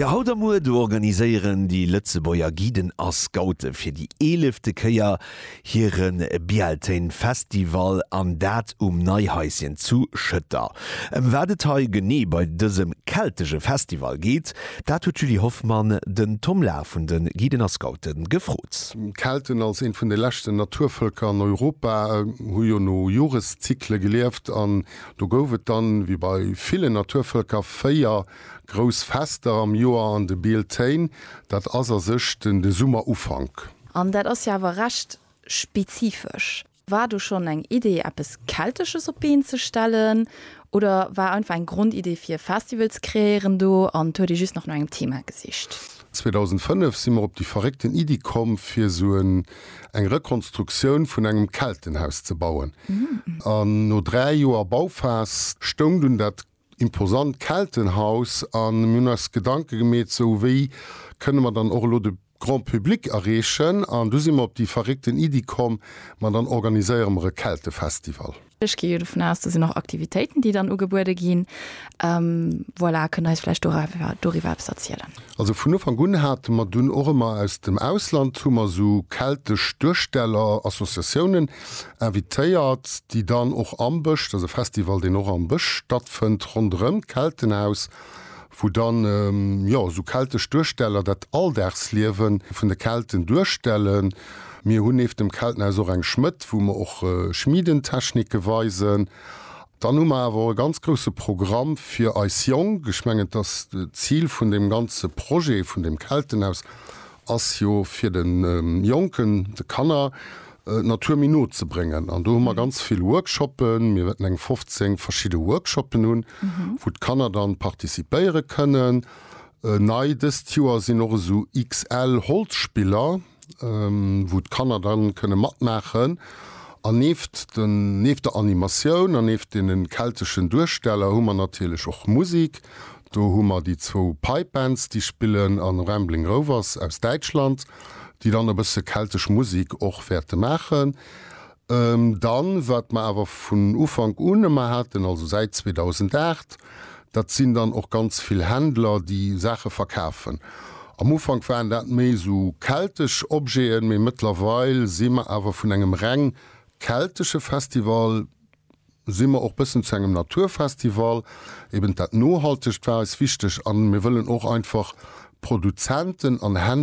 Jo haut a muer do organiséieren déi Lëtzebuerger Guiden a Scoute fir déi eelefte Kéier hire Bealtaine Festival an dat um Neihaischen zu Schëtter. Ëm wat et hei genee bei dësem keltege Festival geet, dat huet d'Julie Hoffmann den Tom Lahr vun de Guiden a Scoute gefrot. D'Kelten als eent vun de leschten Naturvëlker an Europa hu jo no Joreszykle gelieft an Do gouf et dann, wéi bei villen Naturvëlker, véier grouss Fester am Joer an de Bealtaine. Dat ass a sech de Summerufank. An dat ass jo awer recht spezifesch. War do schonn eng Idee, eppes Keltesches op d'Been ze stellen, oder war einfach eng Grondidee, fir e Festival ze kreéieren do, an huet ee just nach no engem Thema gesicht? 2005 si mer op déi verréckten Iddi komm fir sou en eng Rekonstruktioun vun engem Keltenhaus ze bauen. An no 3 Joer Bauphas stoung dunn dat imposant Keltenhaus an mir hunn eis Gedanke gemeet, sou wéi kënne mer dann och elo de Grand Public erreechen? An du si mer op déi verréckten Iddi komm, ma dann organiséiere mer e Keltefestival. Ech gi jo dovun aus, do sinn och Aktivitéiten, déi dann ugebuede ginn. Voilà, kënnt Der eis vläicht doriwwer eppes erzielen? Also vun Ufank un hate mer dunn och ëmmer aus dem Ausland hu mer esou keltesch Duersteller, Associatiounen invitéiert, déi dann och am Bësch, dat ass e Festival, deen och am Bësch stattfënnt, ronderëm d'Keltenhaus, wou dann jo esou keltesch Duersteller dat Alldagsliewe vun de Kelten duerstellen. Mir hunn nieft dem Keltenhaus och eng Schmëdd, wou mer och Schmiedentechnike weisen. Dann hu mer awer och e ganz grousse Programm fir eis Jonk. Ech mengen, dass d'Zil vun deem ganze Projet vun deem Keltenhaus ass jo fir de Jonken, de Kanner d'Natur méi no ze bréngen. An do hu mer ganz vill Workshoppen. Mir wäerten eng 15 verschidde Workshoppen hunn, wou d'Kanner dann participéiere kënnen. Nei dëst Joer sinn och esou XL-Holzspiller, wou d'Kanner dann kënne matmaachen. An neeft den, neeft der Animatioun an neeft deenen kelteschen Duersteller hu mer natierlech och Musik. Do hu mer déi zwou Pipe Bands, déi spillen, an Rambling Rovers aus Däitschland, déi dann e bësse keltesch Musik och wäerte maachen. Dann, wat mer awer vun Ufank un ëmmer haten, also säit 2008, dat sinn dann och ganz vill Händler, déi Saache verkafen. Am Ufank waren dat méi esou keltesch Objeten, mee mëttlerweil si mer awer vun engem reng keltesche Festival, si mer och bëssen zu engem Naturfestival, eben dat Nohaltegt war eis wichteg an mir wëllen och einfach Produzenten an.